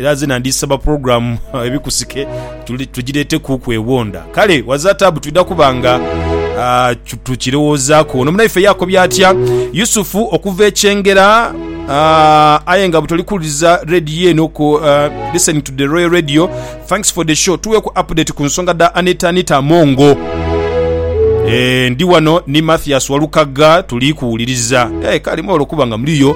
Era zena ndisaba program ebikusike tujireete kuuku ewonda. Kale Wazatabu twidha kuba nga tukirowoozaku. Ono munaife yakobye atya Yusufu okuva e Kyengera aye nga butoli kuwuliriza radio eno ku listening to the Royal Radio. Thanks for the show. Tuweeku update ku nsonga dha Anita Anita Amongo. Eeh ndi wano ni Mathias Walukagga tuli kuwuliriza. Eeh kale mwebale okuba nga muliyo.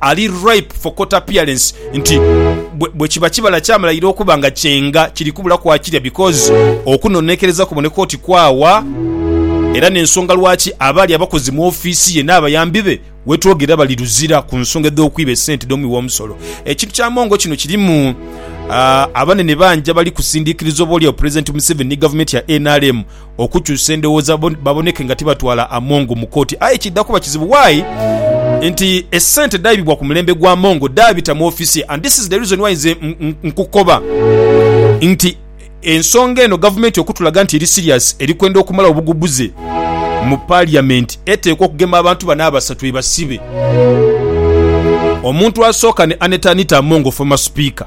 ali ripe for court appearance nti bwekiba kibala kyamulaira okuba nga kyenga kiri kubulaku akirya because okunonekereza kuboneka oti kwaawa era nensonga lwaki abaali abakozi mu office ye n'abayambi be wetwogerera bali luzira ku nsonga edh'okwiba esente dhomuwi w'omusolo. Ekintu kya Mongo kino kirimu abanene bangi abali kusindikiriza oboolyawo Pulezidenti Museveni ni gavumenti ya nrm okukyusa endowooza baboneke nga tibatwala Among mu kooti aye kidha kuba kizibu why nti esente dhaibibwa ku mulembe gwa Among dhaabita mu ofiisi ye and this is the reason why nze nkukoba nti ensonga eno gavumenti okutulaga nti eri serious eri kwenda okumalawo obugubuze mu parliament eteekwa okugema abantu bano abasatu ebasibe omuntu asooka ne Annet Anita Among former speaker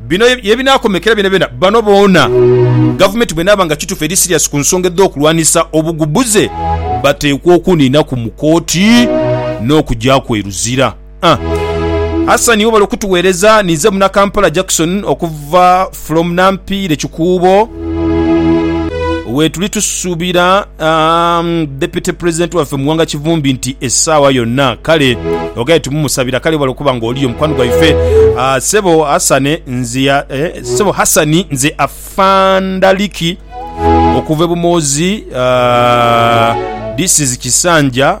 Bino ye binaakomekera byonabyona bano boona Gavumenti bw'enaaba nga kitufu eri siriasi ku nsonga edh'okulwanisa obugubuze bateekwa okuniinaku mu kooti n'okugyaku e Luzira. Hassan webale okutuweereza. Ninze Munakampala Jackson okuva from Nampiire Kikuubo wetuli tusuubira. Um, deputy president waffe muwanga kivumbi nti esaawa yonna kale ogaye tumumusabira kale webale okuba nga oliyo mukwano gwaife uh, sebo hasane nze ya, eh, sebo hasani nze afandaliki okuva ebumoozi uh, this is kisanja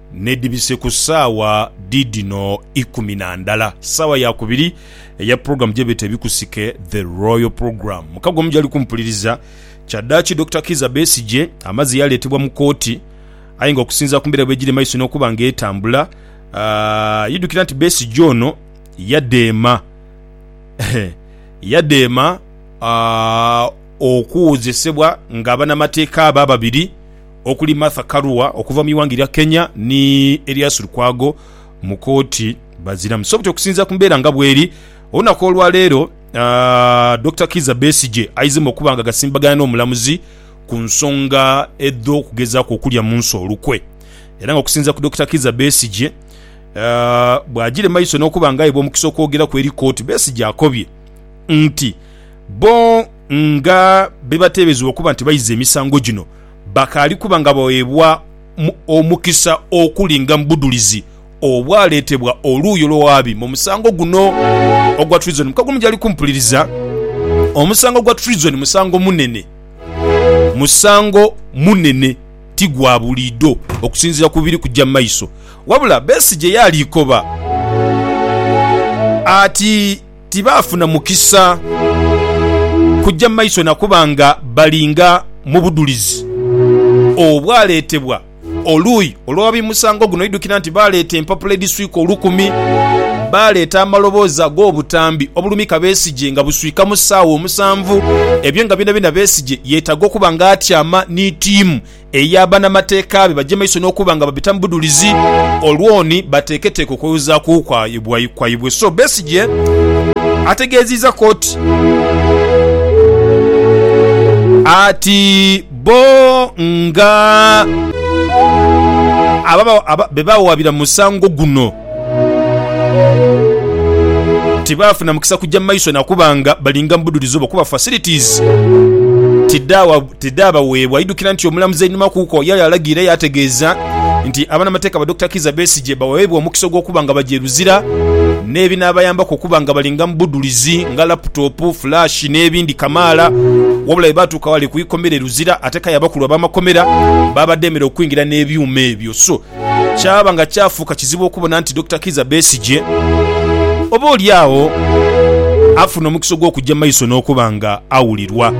N'edhibise ku saawa dhiidhino ikumi na ndala, saawa ya kubiri eya pulogulaamu gye beeta Ebikusike, The Royal Programme, mu kago omujali kumpuliriza. Kyaddaaki Dokita Kiiza Besigye amazze yaleetebwa mu kooti aye nga okusinziira ku mbeera bwegiri maiso n'okuba nga etambula, yidhukira nti Besigye ono yadheema yadheema okuwozesebwa nga banamateeka be ababiri, okuli Martha Karua okuva mu ighanga erya Kenya ni Erias Lukwago mu kooti baziramu so buti okusinzira ku mbeera nga bweri olunaku olwaleero Dokita Kiiza Besigye aizemu okuba nga gasimbagana n'omulamuzi ku nsonga edh'okugezaku okulya munsi olukwe era nga okusinzira ku Dokita Kiiza Besigye bwagire maiso n'okuba nga aibwa omukisa okwogeraku eri kooti Besigye akobye nti bo nga bebatebezebwa okuba nti baiza emisango gino bakaali kuba nga bagheebwa omukisa okulinga mu budhulizi obwaleetebwa oluuyi olw'owaabi mu musango guno ogwa treason. Mu kagumu gyali kumpuliriza, omusango gwa treason musango munene. Musango munene ti gwa buliidho okusinziira ku biri kuja mu maiso. Wabula Besigye yaaliikoba ati. tibaafuna mukisa kuja mu maiso na kuba nga balinga mu budhulizi obwaleetebwa oluuyi olw'ababimusango guno. Idukira nti baaleeta empapula edhiswika olukumi, baaleeta amaloboozi ag'obutambi obulumika Besigye nga buswika mu saawa omusanvu, ebyo nga byonabyona Besigye yeetaaga okuba nga atyama ni tiimu eya banamateeka be baje maiso n'okuba nga babita mu budhulizi olwoni bateeketeeke okwewozaaku kwaibwe. So Besigye ategeeziiza kooti ati bbo nga be baawabira mu musango guno, tibaafuna mukisa kugya mu maiso na kuba nga balinga mu budhulizi obwo kuba facilities tidhaabaweebwa. Idukira nti omulamuzi einhuma kuko yaaya alagiira yaategeeza nti abanamateeka ba Dokita Kizza Besigye baweebwe omukisa ogw'okuba nga bagya e Luzira n'ebinaabayambaku okuba nga balinga mu budhulizi nga laputopu, flash n'ebindi kamaala wabula bwe baatuuka ghale ku ikomera e Luzira ate k'aye abakulu ab'amakomera baabadheemera okwingira n'ebyuma ebyo. So kyaba nga kyafuuka kizibu okubona nti Dokita Kizza Besigye oba oli agho afuna omukisa ogw'okugya mu maiso n'okuba nga awulirwa.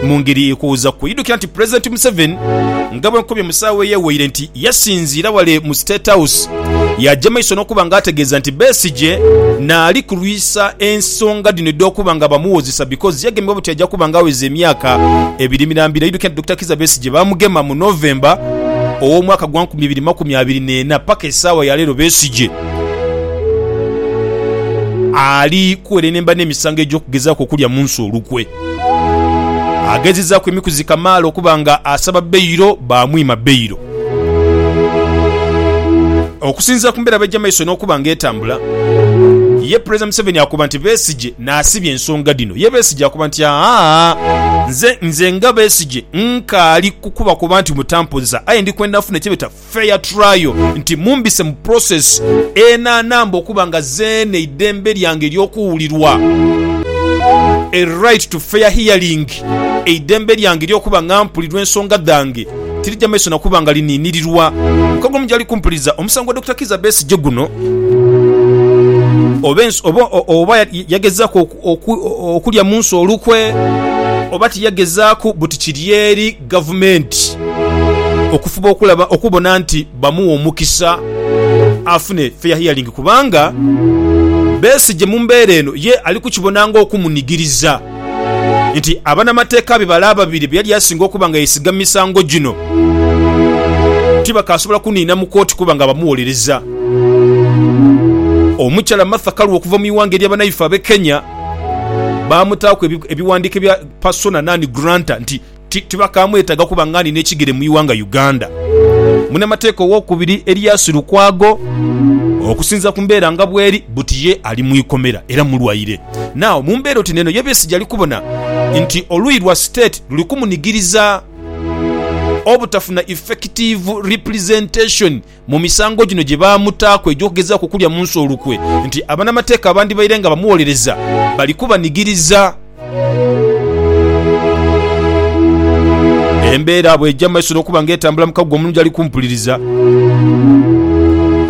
Mu ngeri ekuwuzaku, idukira nti Pulezidenti Museveni nga bwenkobye mu saawa eyeweire nti yasinziira wale mu State House yagya maiso n'okuba nga ategeeza nti Besigye naali kulwisa ensonga dhino edh'okuba nga bamuwozesa because yagemebwa buti agya kuba nga aweza emyaka ebiri mirambira. Idukira nti Dokita Kizza Besigye bamugema mu mu November ow'omwaka gwa nkumi ibiri makumi abiri n'ena paka esaawa ya leero Besigye ali kuwerenemba n'emisango egy'okugezaaku okulya Munsi olukwe. Agezezaaku emikuzi kamaala okuba nga asaba beyiro baamwima beyiro. Okusinziira ku mbeera bwegya maiso n'okuba nga etambula, ye Pulezidenti Museveni akoba nti Besigye Naasibye ensonga dhino ye Besigye akoba nti, Aa, nze, nze nga Besigye nkaali kukuba kuba nti mutampoza aye ndi kwenda nfune kyebeta fair trial nti mumbise mu process enanamba okuba nga zeene eidembe lyange ery'okuwulirwa, a right to fair hearing. Eidembe lyange ery'okuba nga mpulirwa ensonga dhange tirija maiso na kuba nga liniinirirwa. Mukago omu gy'ali kumpuliza omusango gwa Dokita Kiiza Besigye guno, oba yagezaaku okulya mu nsi olukwe oba tiyagezaaku buti kiri eri Gavumenti okufuba okulaba okubona nti bamuwa omukisa afune fair hearing kubanga Besigye mu mbeera eno ye ali kukibona ng'okumunigiriza. nti abanamateeka be bale ababiri be yali asinga okuba nga yeesiga mu misango gino tibakaasobola kuniina mu kooti kuba nga bamuwolereza. Omukyala Martha Karua okuva mu ighanga erya banaife abe Kenya baamutaaku ebiwandiiko ebya Persona non granta nti Ti, tibakaamwetaaga kuba ng'alina ekigere mu ighanga Uganda. Munamateeka ow'okubiri Elias Lukwago, Okusinziira ku mbeera nga bweri, buti ye ali mu ikomera era mulwaire. Now, mu mbeera oti n'eno, ye Besigye ali kubona nti oluuyi lwa State luli kumunigiriza obutafuna effective representation, mu misango gino gye baamutaaku egy'okugezaaku okulya mu nsi olukwe nti abanamateeka abandibaire nga bamuwolereza bali kubanigiriza. Embeera bw'eja mu maiso n'okuba nga etambula mu kaguwa omulungi ali kumpuliriza,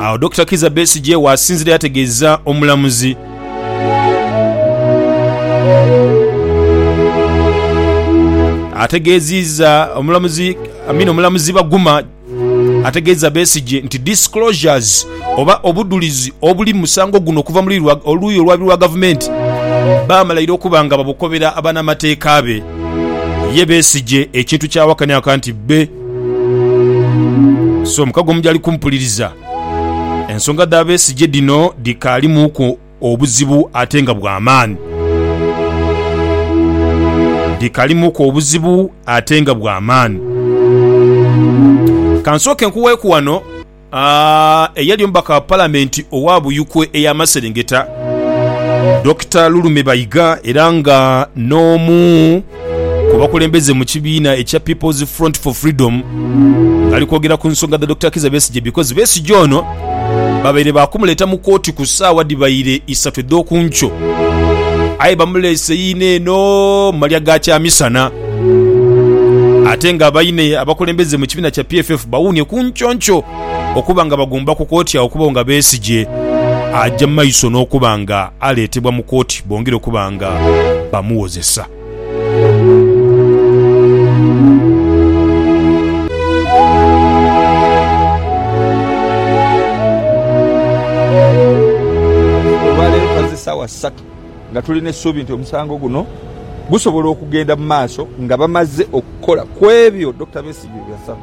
agho Dokita Kizza Besigye waasinzira yategeeza omulamuzi. Ategeeziiza omulamuzi Amina omulamuzi Baguma. ategeeza Besigye nti disclosures oba obudhulizi obuli mu musango guno okuva mu luuyi olwabi lwa gavumenti baamala ira okuba nga babukobera banamateeka be. Ye Besigye ekintu kyawakaniaka nti bbe si omukago mu gyali kumpuliriza. Ensonga dha Besigye dhino dhikaalimuuku. obuzibu ate nga bwa maani. Ndi kalimuku obuzibu ate nga bwa maani. Ka nsooke nkuweeku wano eyali omubaka wa Palamenti owa Buyukwe ey'amaserengeta, Dokita Lulume Bayiga era nga n'omu ku bakulembeze mu kibiina ekya People's Front for Freedom ngali kwogera ku nsonga dha Dokita Kiiza Besigye because Besigye ono babaire baakumuleeta mu kooti ku saawa dhibaire isatu edhokunkyo aye bamuleese yiino eno malya ga kyamisana ate nga baine abakulembeze mu kibiina kya PFF bawuunye ku nkyonkyo. Okuba nga bagumba ku kooti agho okubawo nga Besigye aja mu maiso n'okuba nga aleetebwa mu kooti bongere okuba nga bamuwozesa. sawa satu nga tulina esuubi nti omusango guno gusobola okugenda mu maaso nga bamaze okukola kwebyo Dokita Besigye byeyasaba.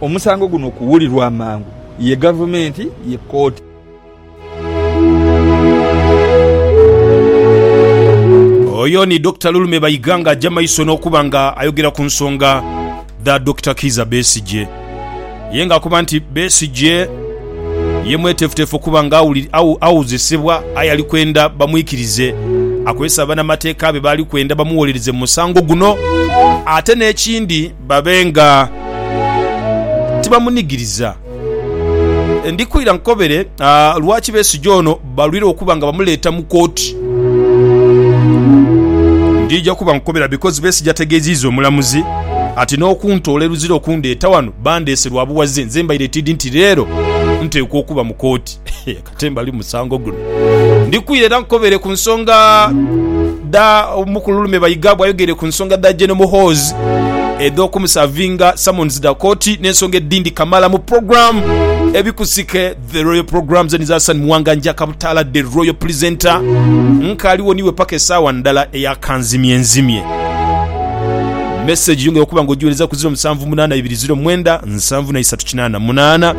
omusango guno okuwulirwa amangu ye gavumenti ye kooti. Oyo ni Dokita Lulume Bayiga nga aja maiso n'okuba nga ayogera ku nsonga dha Dokita Kiiza Besigye. Ye nga akoba nti Besigye ye mwetefutefu okuba nga awozesebwa aye ali kwenda bamwikirize akozese abanamateeka be baali kwenda bamuwolereze mu musango guno. Ate n'ekindi. Babe nga tibamunigiriza. Ndi kwira nkukobere lwaki Besigye ono balwire okuba nga bamuleeta mu kooti. Ndija kuba nkukobera because Besigye ategeziiza omulamuzi ati n'okuntoola e Luzira okundeeta wano bandeese lwa buwaze nze mbaire tiidi nti leero nteekwa okuba mu kooti. Ate mbali musango guno. Ndikwire era nkukobere ku nsonga dha omukulu Lulume Bayiga bwayogeire ku nsonga dha General Muhoozi edh'okumusavinga summons dha kooti n'ensonga edhindi kamala mu program Ebikusike The Royal Program zeni za San Muwanga Njaka Butaala The Royal Presenter Nkaaliwo niwe paka esaawa ndala eya kanzimye nzimye. Message yongera okuba nga ogiwereza ku ziro musanvu munaana ibiri ziro mwenda nsanvu na isatu. kinana munana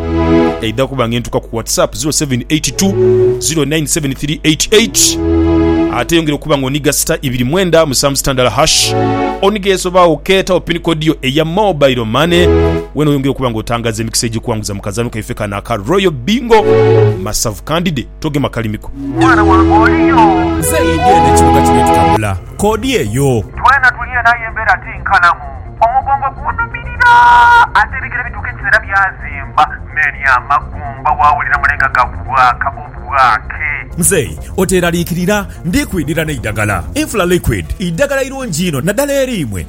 eidha kuba ngentuka ku whatsapp 0782097388 ate yongera okuba nga oniga sita ibiri mwenda musanvu sita ndala hash oniga eso ba oketawo pin code yo eya mobile money wena oyongera okuba nga otangaza emikisa egyikuwanguza mu kazanho kaife kano aka royal bingo masavu kandide togema kalimi ko. Mwana wange oli yo? Nze idi eno ekibuga kino etukabula kodi eyo. Twena tuli eno aye embera ti nkalamu. Omugongo gunhumirira ate ebigere bituuka ekiseera byazimba meni amagumba wawulira mule nga gabwaaka obwaake. Mzei oteraliikirira, ndi kwidhira n'eidagala. Infra Liquid idagala irungi inho naddala eri imwe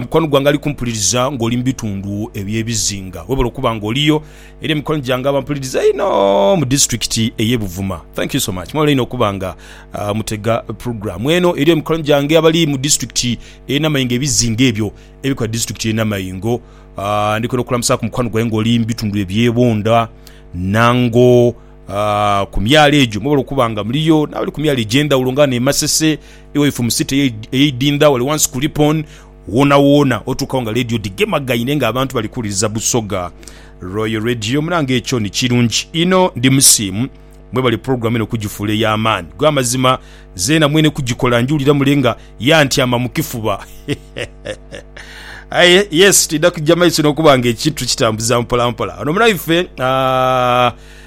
Mukwano gwange ali kumpuliriza ng'oli mu bitundu eby'ebizinga, webale okuba ng'oliyo. Eriyo mikwano gyange abampuliriza einho mu disiturikiti ey'e Buvuma. Thank you so much. Mwebale inho okuba nga mutega pulogulaamu eno. Eriyo mikwano gyange abali mu disiturikiti ey'e Namayingo, ebizinga ebyo ebikola disiturikiti y'e Namayingo. Ndi kwenda okulamusaaku mukwano gwange ng'oli mu bitundu eby'e Bunda, Nango, ku myalo egyo. Mwebale okuba nga muliyo n'abali ku myalo egy'endhawulo nga ghano e Masese. Iwe ife mu city eye idindha wale wansi ku Ripon wona wona otuukawo nga radio dhigemagaine nga abantu bali kuwuliriza Busoga Royal Radio munange ekyo ni kirungi inho ndi musiimu mwebale program eno okugifuula eya maani gwe amazima zeena mwene kugikola njiwulira mule nga yantyama mu kifuba aye yes tidha kugya maiso nokuba nga ekintu tukitambuza mpola mpola ono munaife uh,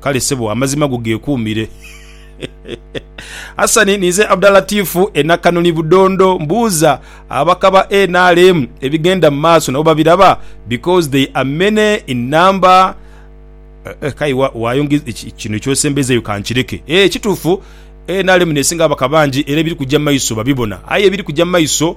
Kale sebo amazima go geekuumire. Hassan, ninze Abdalatifu e Nakanoni Budondo. Mbuuza ababaka ba nrm ebigenda mu maaso nabo babiraba? Because they are many in number. Kale waayongeza kino eky'osembezeeyo ka nkireke. Ee, kituufu nrm n'esinga ababaka bangi era ebiri kujja mu maiso babibona. Aye ebiri kujja mu maiso.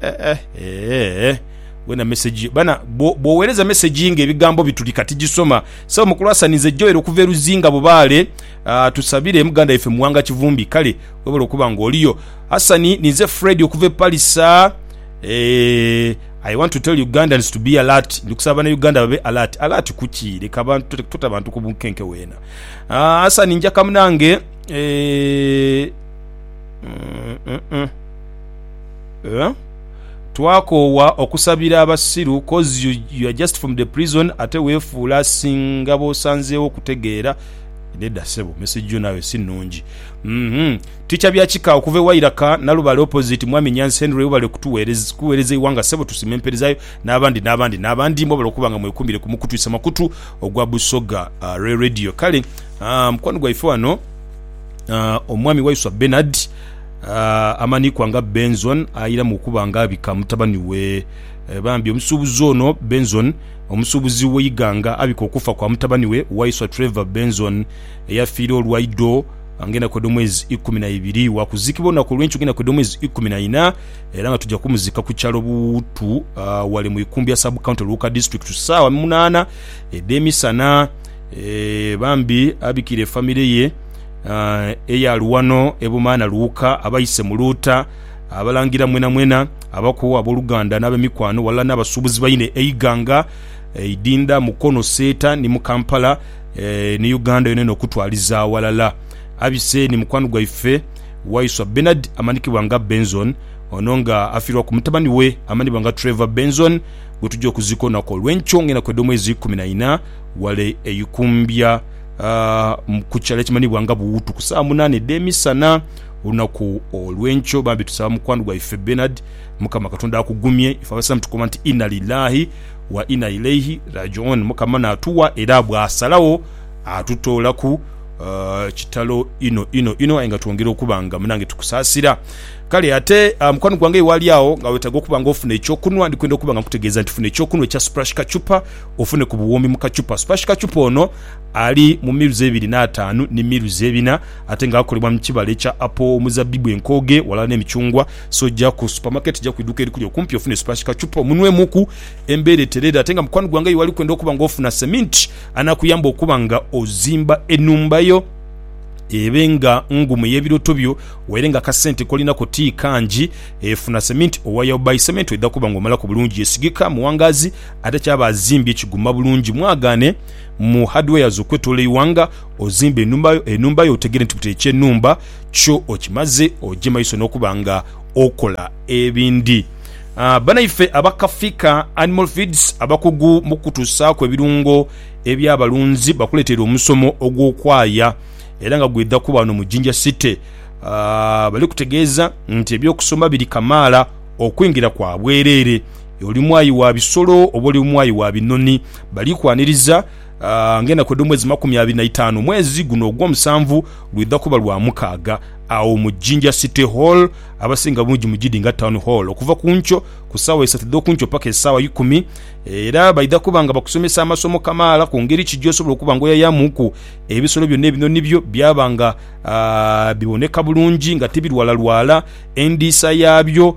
Eh, eh, eh, eh. Wena message bana bwo- bwowereza message nga ebigambo bitulika tijisoma. Sawo mukulu Hassan nze Joel okuva e Luzinga Bubaale ah, tusabire muganda yaffe Muwanga Kivumbi kale webale okuba nga oliyo. Hassan ninze Fred okuva e Palisa eh, I want to tell Ugandans to be alert ndi kusaba bana Uganda babe alert. Alert kuki leka abantu tota- tota bantu ku bunkenke wena. Ah, Hassan njaka munange eh, mm, mm, mm. Twakoowa okusabira abasiru coz you you're just from the prison ate wefuula asinga bosanzeewo okutegeera Nedda sebo message yo naawe si nungi uhmm Teacher Byakika okuva e Wairaka Nalubale opposite Mwami Nyanzi Henry webale kutuwerez kuwereza eighanga sebo tusima emperezayo n'abandi n'abandi n'abandi mwebale okuba nga mwekumire ku mukutwisa makutu ogwa Busoga re Radio kale aah mukwano gwaife wano aah Omwami Waiswa Bernard Amanikwa nga Benzon airamu okuba nga abika mutabani we. Bambi omusuubuzi ono Benzon, omusuubuzi w'e Iganga abika okufa kwa mutabani we Waiswa Trevor Benzon eyafiira olwa ido nga enaku edh'omwezi ikumi na ibiri. Wakuziikibwa olunaku olw'enkyo nga enaku edh'omwezi ikumi na ina era nga tuja kumuziika ku kyalo Buwutu wale mu Ikumbya Sub County Luuka District ku saawa munaana edh'emisana. Bambi abikire famire ye. Eyali wano e Bumaana Luuka, abaise mu Luuta, abalangira mwenamwena, abako, aboluganda n'abemikwano walala n'abasuubuzi baine eighanga eidinda Mukono, Seeta ni mu Kampala ni Uganda yonayona okutwaliza awalala. Abise ni mukwano gwaife Waiswa Bernard amanhikibwa nga Benzone ono nga afiirwaku mutabani we amanhibwa nga Trevor Benzone gwetuja okuzika olunaku olw'enkyo ng'enaku edh'omwezi ikumi na ina ghale e Ikumbya. ku kikyaalo ekimanhibwa nga Buwutu ku saawa munaana edh'emisana olunaku olw'enkyo. Bambi tusaba mukwano gwaife Bernard Mukama Katonda akugumye. Ife Abasiraamu tukoba nti Inna Lillaahi wa Inna Ilaihi Raaji'uun, Mukama naatuwa era bw'asalagho atutoolaku. Kitalo inho inho inho aye nga twongera okuba nga munange tukusaasira. Kale ate mukwano gwange aye waali agho nga weetaaga okuba nga ofuna ekyokunhwa, ndi kwenda okuba nga nkutegeeza nti funa ekyokunhwa ekya Splash Kachupa. ofune ku buwumbi mu kachupa. Supersh kachupa ono ali mu miruzi ebiri n'ataanu ni miruzi ebina ate nga akolebwa mu kibala ekya apo, omuzabbibu, enkooge walala n'emicungwa. So ja ku supamaketi, ja ku iduuka erikuli okumpi ofune supersh kachupa omunwemuku embeera etereere. Ate nga mukwano gwange y'owali kwenda okuba nga ofuna seminti anakuyamba okuba nga ozimba enhumba yo ebe nga ngumu ey'ebirooto byo waire nga akasente kolinako ti kangi. Funa seminti owa Yaobai Cement edha kuba nga omalaku bulungi, esigika mu wangaazi ate kyaba azimbye kiguma bulungi mwagaane mu hardwares okwetoola eighanga ozimbe enhumba yo otegere nti buti ekye enhumba kyo okimaze oje maiso nokuba nga okola ebindi Banaife aba Kafika Animal Feeds abakugu mukukutusaaku ebirungo ebya balunzi bakuleteire omusomo ogwokwaaya era nga gwedha kuba wano mu Jinja City Balikutegeeza nti ebyokusoma biri kamaala okwingira kwa bwerere Oli mwayi wa bisolo oba oli mwayi wa binoni, bali kwaniriza ng'enaku edh'omwezi makumi abiri na itaanu. Omwezi guno ogw'omusanvu lwidha kuba lwa mukaaga agho mu Jinja City Hall, abasinga bungi mugidinga Town Hall, okuva ku nkyo ku saawa isatu edh'oku nkyo paka esaawa ikumi. Era baidha kuba nga bakusomesa amasomo kamaala ku ngeri ki gy'osobola okuba nga oyayamuuku ebisolo byo n'ebinoni byo byaba nga biboneka bulungi nga tibirwalalwala, endiisa yaabyo,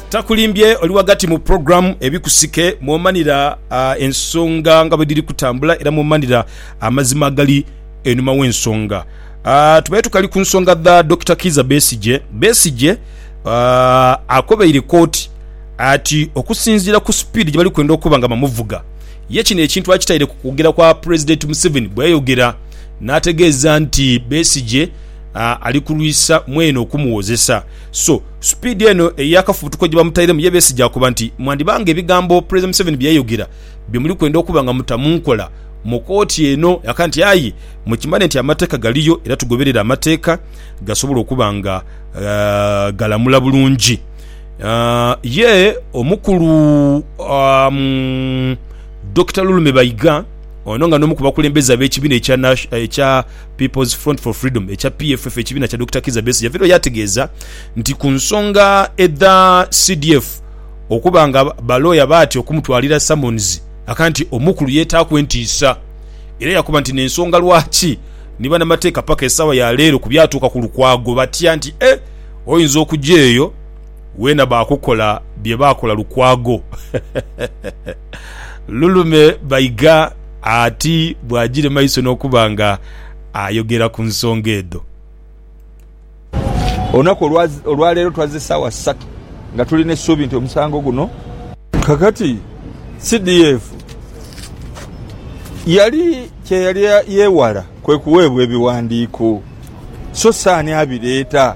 Takulimbye oli ghagati mu pulogulaamu Ebikusike mw'omanira ensonga nga bwe dhiri kutambula era mw'omanira amazima agali einhuma w'ensonga. Tubaire tukali ku nsonga dha Dokita Kiiza Besigye. Besigye akobeire kooti ati okusinziira ku sipiidi gye bali kwenda okuba nga bamuvuga, ye kino ekintu akitaire ku kwogera kwa Pulezidenti Museveni bwe yayogera n'ategeeza nti Besigye ali kulwisa mwene okumuwozesa. So, supiidi eno ey'akafubutuko gye bamutairemu ye besigye akoba nti, Mwandiba nga ebigambo Pulezidenti Museveni bye yayogera bye muli kwenda okuba nga muta mu nkola mu kooti eno yaka nti aye mukimanye nti amateeka galiyo era tugoberere amateeka gasobole okuba nga galamula bulungi ye omukulu Dokita Lulume Bayiga ono nga n'omu ku bakulembeze ab'ekibiina ekya People's Front for Freedom ekya PFF, ekibiina kya Dokita Kizza Besigye, yaviirayo yaategeeza nti ku nsonga edha CDF okuba nga balooya baatya okumutwalira summons, akaba nti Omukulu yeetaaku entiisa era yakoba nti n'ensonga lwaki ni banamateeka paka esaawa ya leero ku byatuuka ku Lukwago batya nti eh oyinza okugya eyo weena baakukola bye baakola Lukwago. Lulume Baiga ati bw'agiire mu maiso n'okuba nga ayogera ku nsonga edho. Olunaku olwaleero twazze ssaawa ssatu nga tulina essuubi nti omusango guno. Kakati CDF yali kye yali yeewala kwe kuweebwa ebiwandiiko so si ani abireeta.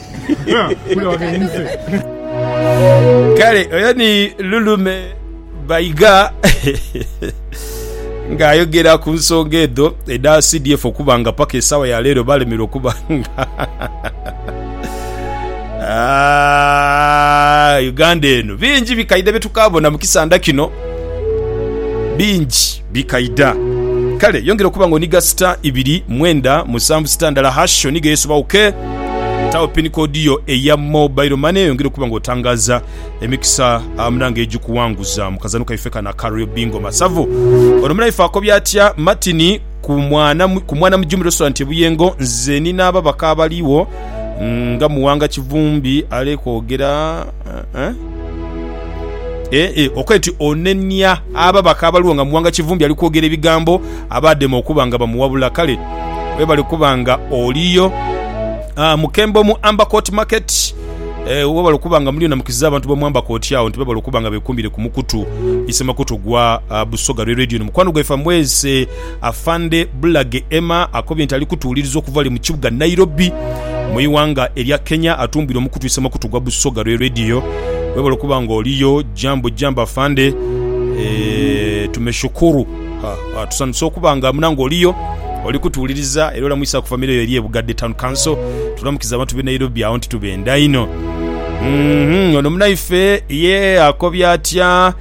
Kale oyo ni Lulume Baiga ng'ayogera ku nsonga edho edha CDF okuba nga paka esaawa ya leero balemerwa okuba nga Ah, Uganda eno bingi bikaidha bye tukaabona mu kisanda kino bingi. bikaidha. Kale yongera okuba nga onigha sita ibiri, mwenda, musanvu, sita ndala hash onighe yesoba OK. Tagho pin code yo eya mobile money oyongere okuba nga otangaza emikisa munange egikuwanguza mu kazano kaife kano aka Real Bingo Masavu. Ono munaife akobye atya Martin ku mwana ku mwana mu Jumbi Restaurant e Buyengo nze ni n'ababaka abaligho nga Muwanga Kivumbi, Alex Kwogera, Okoya ti onenia ababaka abaligho nga Muwanga Kivumbi ali kwogera ebigambo abaadema okuba nga bamuwabula. Kale webale kuba nga oliyo. Mukembo mu Amber Court Market, webale okuba nga muliyo namukiziza abantu b'omu Amber Court agho nti bebale okuba nga bekumbire ku mukutu isemakoto gwa Busoga Rwe Radio. Ni mukwano gwaife amwese. Afande Bulage Emma akobye nti ali kutuwuliriza okuva wale mu kibuga Nairobi mu iwanga erya Kenya atumbwire omukutwise makutu gwa Busoga Royal Radio. Webale okuba nga oliyo jambo jambo Afande eeh tumeshukuru ha tusanhuse okuba nga muna nga oliyo oli kutuwuliriza era olamwisa ku famire yo eri e Bugadde Town Council. Tulamukiza abantu be Nairobi agho nti tubenda inho. Uhmm ono munaife ye akobye atya?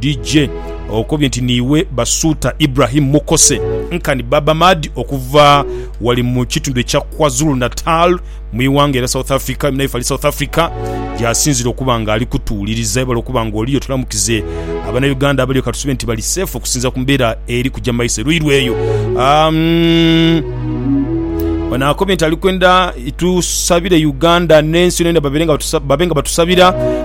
DJ okobye nti niiwe Basuuta Ibrahim Mukose nkani Baba Madi okuva wali mu kitundu ekya Kwazulu Natal mu iwanga era South Africa naye fali South Africa gyasinzira okuba nga ali kutuwuliriza ebala okuba nga oliyo tulamukize abana Uganda abaliyo katusube nti bali safe okusinza ku mbeera eri kujja maiso eruirwa eyo um, Ono akobye nti ali kwenda tusabire Uganda n'ensi yona yona babe nga batusabira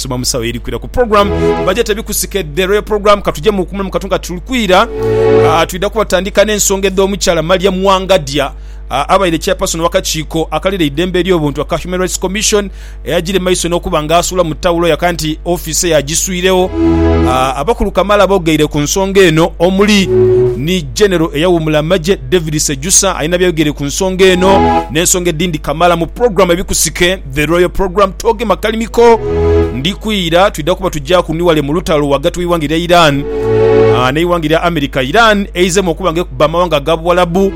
Soma musawo eri kwira ku program baje tebikusikedde royal program katuje mu kumulamu katunga tuli kwira uh, twida kubatandika n'ensonga edh'omukyala Mariam Wangadya Ah, abaire chairperson wakakiiko akalira eidembe ery'obuntu aka Human Rights Commission eyagire maiso n'okuba nga asuula mu tawulo yaka nti ofiisi eye agiswirewo Ah, abakulu kamaala bogeire ku nsonga eno omuli ni genero eyawuumula amagye David Sejusa alina byayogeire ku nsonga eno n'ensonga edindi kamaala mu program ebikusike The Royal Program Tooge Makalimiko Ndi kwira twidha kuba tugya ku ni wale mu lutalo ghagati w'eighanga erya Iran n'eighanga erya America. Iran eizeemu okuba nga ekubba amawanga aga Buwalabu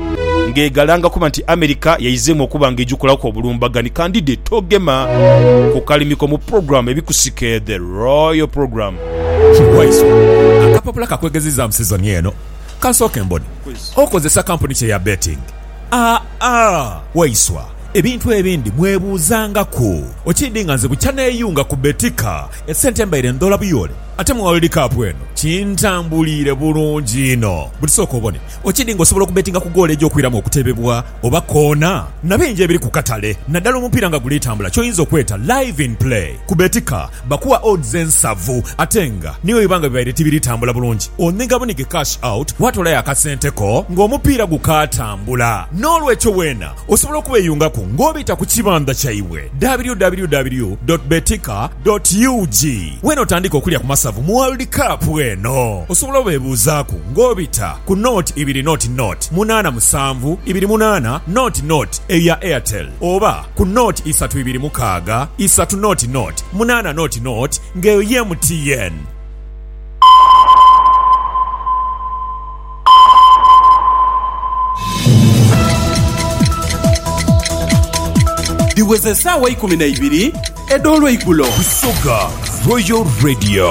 ng'egalanga kuba nti America yaizeemu okuba nga egikolaku obulumbaganhi. Kandide togema ku kalimiko mu program ebikusike The Royal Program. Ki waiswa, akapapula ka kwegeziizaamu sizoni eno. Ka nsooke mbone. Okozesa kampuni ki eya betting? Aa, waiswa, ebintu ebindi mwebuuzangaku. Okiidhi nga nze bukya neeyunga ku Betika, esente mbaire ndhoola buyoole, ate mu World Cup eno kintambuliire bulungi inho. Buti sooka obone, okiidhi nga osobola okubetinga ku goolo egy'okwiramu okutebebwa oba koona? Na bingi ebiri ku katale, naddala omupiira nga guli tambula, ky'oyinza okweta Live in Play. Ku Betika bakuwa odds ensavu ate nga ni bwe biba nga bibaire tibiri tambula bulungi, onhiga bunhige cash out waatoolayo akasente ko ng'omupiira gukaatambula. N'olwekyo weena osobola okubeeyungaku ng'obita ku kibandha kyaibwe, www dot betika dot ug. Weena otandike okulya ku masavu mu World Cup eno. Osobola obeebuuzaaku ng'obita ku nought ibiri nought nought munaana musanvu ibiri munaana nought nought eyo ya Airtel oba. ku nought isatu ibiri mukaaga isatu nought nought munaana nought nought nga eyo ye MTN. Dhiweze esaawa eikumi na ibiri edh'olweigulo. Busoga Royal Radio.